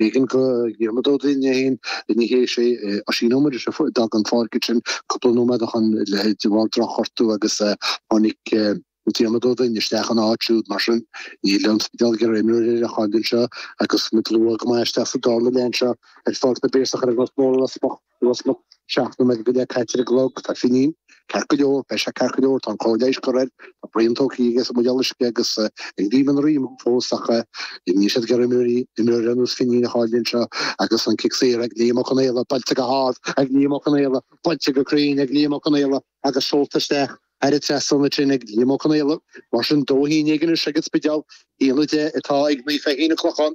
B'éigean go Dhiarmaid Ó Duinn é féin ní hea, is é Oisín Ó Muiris a d'fhág an pháirc ansin cúpla nóiméad ó shin de bharr drochghortú agus tháinig Diarmaid Ó Duinn isteach ina áit siúd. Mar sin níl an Spidéal ag iarraidh imreoir eile a chailleadh anseo agus muid luath go maith isteach sa dara leath anseo ar Pháirc na bPiarsach ar an nGort Mór i Ros Muc. Os cionn seacht nóiméad go leith caite ar an gclog, tá Finín, ceart go leor, beidh sé ceart go leor, tá an chóir leighis curtha air, tá braon tógtha aige as an mbuidéal uisce agus ag ríomh an ríom fós ach níl siad ag iarraidh imreoirí imreoir ar nós Finín a chailleadh anseo agus an cic saor ag Liam Ó Conghaile, buailte go hard ag Liam Ó Conghaile, buailte go cruinn ag Liam Ó Conghaile agus seolta isteach thar an trasnán ansin ag Liam Ó Conghaile. Mar sin dó haon déag anois ag an Spidéal, a haon a deich atá ag Naomh Feichín an Clochán.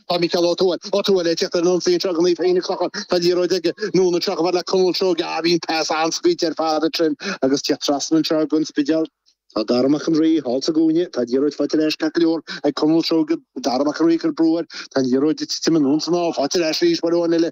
Tá Micheál Ó Tuathail, Ó Tuathail, ag teacht ar an ionsaí anseo ag Naomh Feichín an Clochán. Tá an liathróid aige, anonn anseo chomh fada le Conall Seoige, ah, bhí an pas an-scaoilte ar fad ansin agus teacht trasna anseo ag An Spidéal. Tá Dara Mac an Rí thall sa gcúinne, tá an liathróid faighte ar ais ceart go leor ag Conall Seoige, Dara Mac an Rí ag cur brú air, tá an liathróid ag titim anonn san aer, faighte ar ais arís, Maire Ó Finneadha.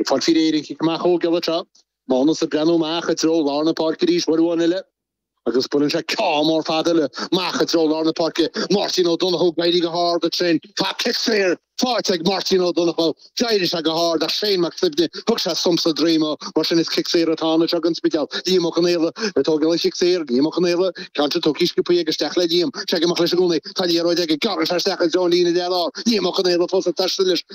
Ag fáil faoi réir an chic amach a thógáil atá Mánas ag breathnú amach i dtreo lár na páirce arís uair amháin eile, agus buaileann sé ceann mór fada leis amach i dtreo lár na páirce, Máirtín Ó Donnchadha ag éirí go hard ansin, tá cic saor faighte ag Máirtín Ó Donnchadha, d'éirigh sé go hard ach Shane Mac Suibhne thug sé sonc sa droim dó, mar sin is cic saor atá anois ag an Spidéal, Liam Ó Conghaile ag tógáil an chic saor, Liam Ó Conghaile, an ceann sin tógtha sciobtha aige isteach le Liam, ag teacht amach leis i gcónaí, tá an liathróid aige, gearrann sé isteach i dtreo an líne dhearthár, Liam Ó Conghaile fós ag taisteal leis,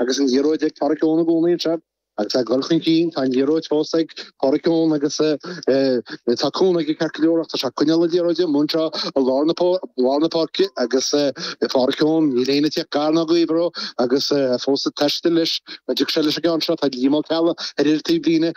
agus an liathróid ag Pádraic Eoin i gcónaí anseo agus é ag goil chun cinn, tá an liathróid fós ag Pádraic Eoin agus tá cúnamh aige ceart go leor ach tá sé ag coinneáil na liathróide anonn anseo i lár na páirce agus Pádraic Eoin, níl éinne ag teacht gar ná gaobhar dó agus fós ag taisteal leis, dtig sé leis an gceann seo, tá Liam Ó Ceallaigh ar an taobhlíne.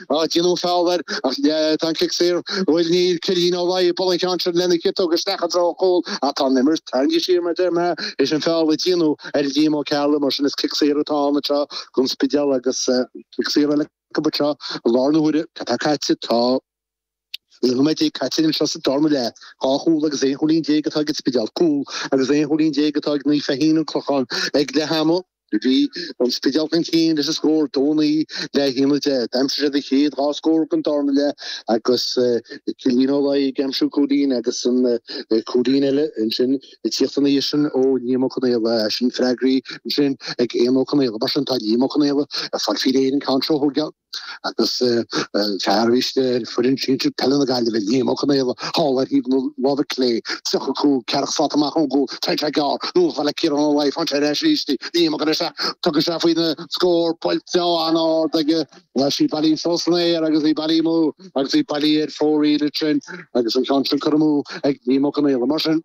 á déanamh feall air, ach tá an cic saor. Bhuel, bhí Cillian Ó Laoi ag bualadh an ceann sin lena chiotóg isteach i dtreo an chúil ach tá an imirt tarraingthe siar mar a deir mé, leis an feall a déanadh ar Liam Ó Ceallaigh, mar sin is cic saor atá ann anseo don Spidéal agus cic saor eile acu anseo i lár na huaire. Céard atá caite? Tá. Naoi nóiméad caite anseo sa dara leath, dhá chúl agus aon chúilín déag atá ag an Spidéal, cúl agus aon chúilín déag atá ag Naomh Feichín an Clochán ag leath ama. Bhí an Spidéal chun cinn leis an scór dó naoi le haon deich. D'aimsigh siad an chéad dhá scór den dara leath agus Cillian Ó Laoi ag aimsiú cúilín agus an cúilín eile ansin ag tíocht ansin ó Liam Ó Conghaile ach ansin freagra ansin ag Éamonn Ó Conghaile. Mar sin tá Liam Ó Conghaile ag fáil faoi réir an ceann seo a thógáil. agus fear a bhí istigh ar fhoireann sinsir peile na Gaillimhe, Liam Ó Conghaile, thall ar thaobh na láimhe clé, 35, ceathracha slat amach ón gcúl, tógtha gearr, anonn chomh fada le Ciarán Ó Laoi, faighte ar ais arís, Liam Ó Conghaile, tugann sé faoina scór buailte an-ard aige, tá sí bailithe suas san aer agus í bailithe amú agus í bailithe ar fóraoil ansin agus an ceann sin curtha amú ag Liam Ó Conghaile mar sin.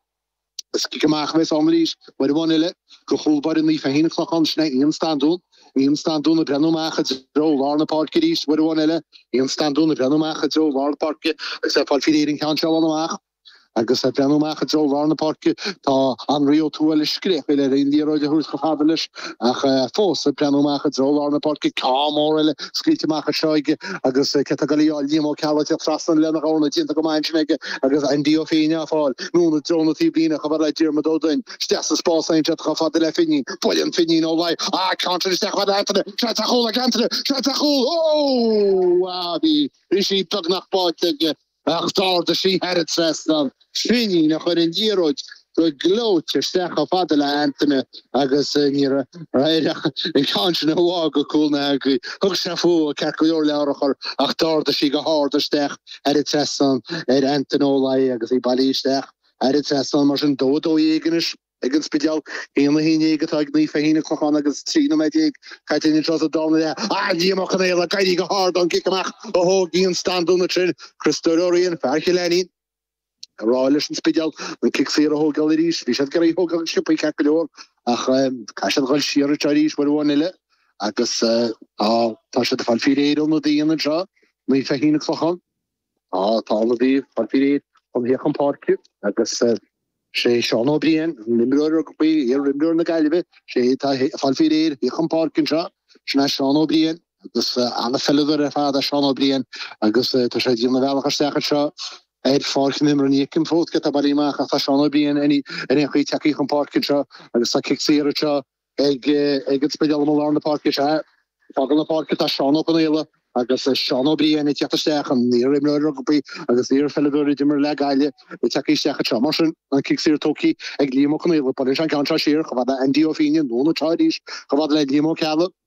Is cic amach a bheas ann arís, uair amháin eile, go chúl báire Naomh Feichín Clochán sin é Ian Standún, Ian Standún ag breathnú amach i dtreo lár na páirce arís, uair amháin eile, Ian Standún ag breathnú amach i dtreo lár na páirce agus é ag fáil faoi réir an ceann seo a ligean amach. Agus ag breathnú amach i dtreo lár na páirce, tá Anraí Ó Tuathail ag scréachaíl air an liathróid a thabhairt chomh fada leis. Ach fós, ag breathnú amach i dtreo lár na páirce, ceann mór eile scaoilte amach anseo aige agus cé atá ag goil á fháil, Liam Ó Ceallaigh ag tíocht trasna lena dhorna déanta go maith ansin aige agus Andy Ó Fíne á fáil, anonn i dtreo an taobhlíne chomh fada le Diarmuid Ó Duinn, isteach sa spás Aontrach chomh fada le Finnian, buaileann Finnian Ó Laoi an ceann sin isteach fad le hAntaine, seans ar chúl ag Antaine, seans ar chúl! Ó! Bhí sí beagnach báite aige Ach d'ardaigh sí thar an trasnán, Finnian a chuir an liathróid go gleoite isteach chomh fada le Antaine agus ní raibh air ach an ceann sin a shá go cúl na heangaí. Thug sé fúithi ceart go leor le urchar ach d'ardaigh sí go hard isteach thar an trasnán ar Antaine Ó Laoi agus í bailithe isteach thar an trasnán mar sin dó a dó dhéag anois. ag an Spidéal, aon a haon déag atá ag Naomh Feichín an Clochán agus trí nóiméad déag caite againn anseo sa darna leath, Liam Ó Conaola ag éirí go hard ón gcic amach a thóg Ian Standún ansin Criostóir Ó Riain fear Chill Ainnín ag rá leis an Spidéal an cic saor a thógáil arís bhí siad ag iarraidh é a thógáil sciobthaí ceart go leor ach caithfidh siad a dhul siar arís uair amháin eile agus tá sé ag fáil faoi réir ionadaí anseo Naomh Feichín an Clochán Tá ionadaí ag fáil faoi réir chun a thíocht chun páirce agus sé Seán Ó Briain, an t-imreoir rugbaí, iar-imreoir na Gaillimhe, sé atá ag fáil faoi réir a thíocht chun páirce anseo. Sin é Seán Ó Briain agus an-pheileadóir ar fad é Seán Ó Briain agus tá sé ag déanamh a bhealach isteach anseo ar pháirc na himeartha. Ní fheicim fós cé atá bailithe amach ach tá Seán Ó Briain ar aon chaoi ag teacht, ag tíocht chun páirce anseo agus tá cic saor anseo Ag an Spidéal amuigh i lár na páirce, sea, ag fágáil na páirce tá Seán Ó Conaola agus Seán Ó Briain ag teacht isteach, an iar-imreoir rugbaí agus iarpheileadóir a d'imir le Gaillimh ag teacht isteach anseo. Mar sin, an cic saor tógtha ag Liam Ó Conaola. Buaileann sé an ceann seo siar, chomh fada le Andy Ó Fíne, buailte arís, chomh fada le Liam Ó Ceallaigh.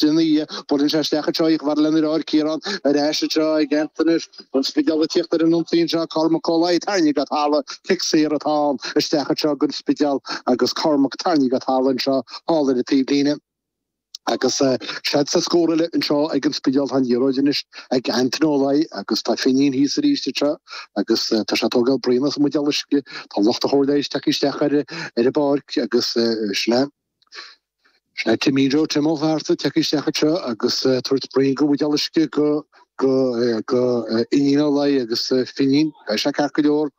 D'fhianaithe, buaileann sé isteach anseo í chomh fada le Anraí, Ciarán arís anseo ag Antaine is an Spidéal ag tíocht ar an ionsaí anseo. Cormac Ó Laoi tarraingthe go talamh, cic saor atá ann isteach anseo gon Spidéal agus Cormac tarraingthe go talamh anseo thall ar an taobh líne agus seans ar scór eile anseo ag an Spidéal. Tá an liathróid anois ag Antaine Ó Laoi agus tá Fínín thíos arís anseo agus tá sé ag tógáil braon as an mbuidéal uisce. Tá lucht an chóir leighis ag teacht isteach ar an bpáirc agus sin é. Sin é Timín Joe Tim Ó Fátharta ag teacht isteach anseo agus ag tabhairt braon go bhuidéal uisce, go, go, go Finín Ó Laoi agus Finín. Beidh sé ceart go leor.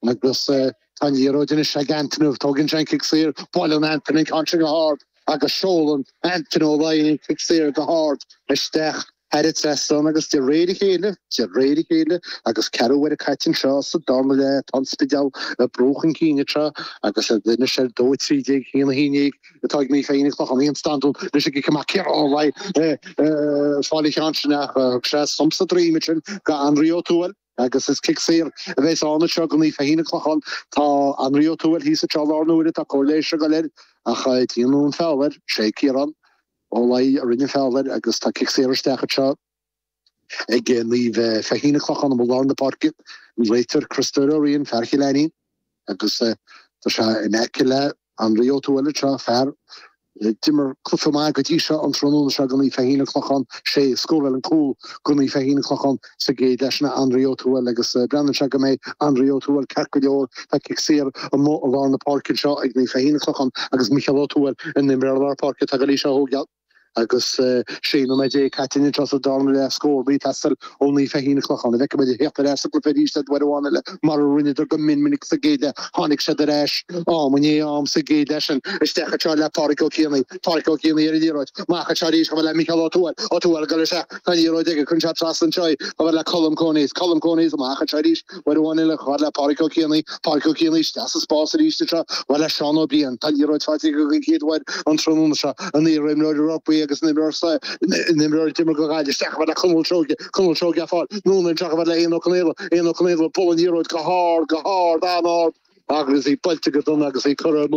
Agus tá an liathróid anois ag Antaine. Tógann sé an cic saor, buaileann Antaine an ceann sin go hard agus seolann Antaine Ó Laoi an cic saor go hard isteach Thar an trasnán agus de réir a chéile, de réir a chéile, agus ceathrú uaire caite anseo sa darna leath, tá an Spidéal ag brú chun cinn anseo agus anois ar dó 13 go haon 11, atá ag Naomh Feichín An Clochán Eoin Standún, leis an gcic amach Ciarán ag fáil an cheann sin ach thug sé thump sa droim ansin go Anraí Ó Tuathail agus is cic saor a bheas ann anseo go Naomh Feichín An Clochán. Tá Anraí Ó Tuathail thíos anseo i lár na huaire, tá cóir leighis ag dul air ach déanadh an feall air, sé Ciarán. Ó Laoi a rinne foul air, agus tá cic saor isteach anseo ag Naomh Feichín An Clochán amuigh i lár na páirce, an réiteoir Criostóir Ó Riain, fear Chill Ainín, agus tá sé in aice le Anraí Ó Tuathail anseo, fear d'imir cluiche maith go dtí seo an tráthnóna seo go Naomh Feichín an clochán, sé a scóráil an cúl go Naomh Feichín an clochán. sa gcéad leath sin Anraí Ó Tuathail agus breathnaíonn sé go mbeidh Anraí Ó Tuathail ceart go leor tá cic saor amuigh i lár na páirce anseo ag Naomh Feichín, An Clochán agus Micheál Ó Tuathail an t-imreoir lár páirce tá go leí seo ó gheall agus 16 nóiméad caite anseo sa dara leath scór ag teastáil ó Naomh Feichín, An Clochán an bhfeicfimid iad ag theacht ar ais sa gcluiche arís uair amháin eile mar a rinneadar go mion minic sa gcéad leath tháinig siad ar ais am i ndiaidh am sa gcéad leath sin isteach anseo le Pádraig Ó Cianaigh Pádraig Ó Cianaigh ar an liathróid amach anseo arís chomh fada le Micheál Ó Tuathail Ó Tuathail ag dul isteach Tá an liathróid aige, cuireann sé trasna anseo chomh fada le Colm Coneys. Colm Coneys amach anseo arís, uair amháin eile chomh fada le Pádraig Ó Cianaí. Pádraig Ó Cianaí isteach sa spás arís anseo chomh fada le Seán Ó Briain. Tá an liathróid faighte aige don chéad uair an tráthnóna seo, an t-imreoir rugbaí agus an imreoir sa an imreoir a d'imir go Gaillimh isteach chomh fada le Conall Seoige, Conall Seoige á fáil anonn anseo chomh fada le Éamonn Ó Conaola, Éamonn Ó Conaola ag bualadh an liathróid go hard, go hard, an-ard. Agus í buailte go dona agus í curtha ar.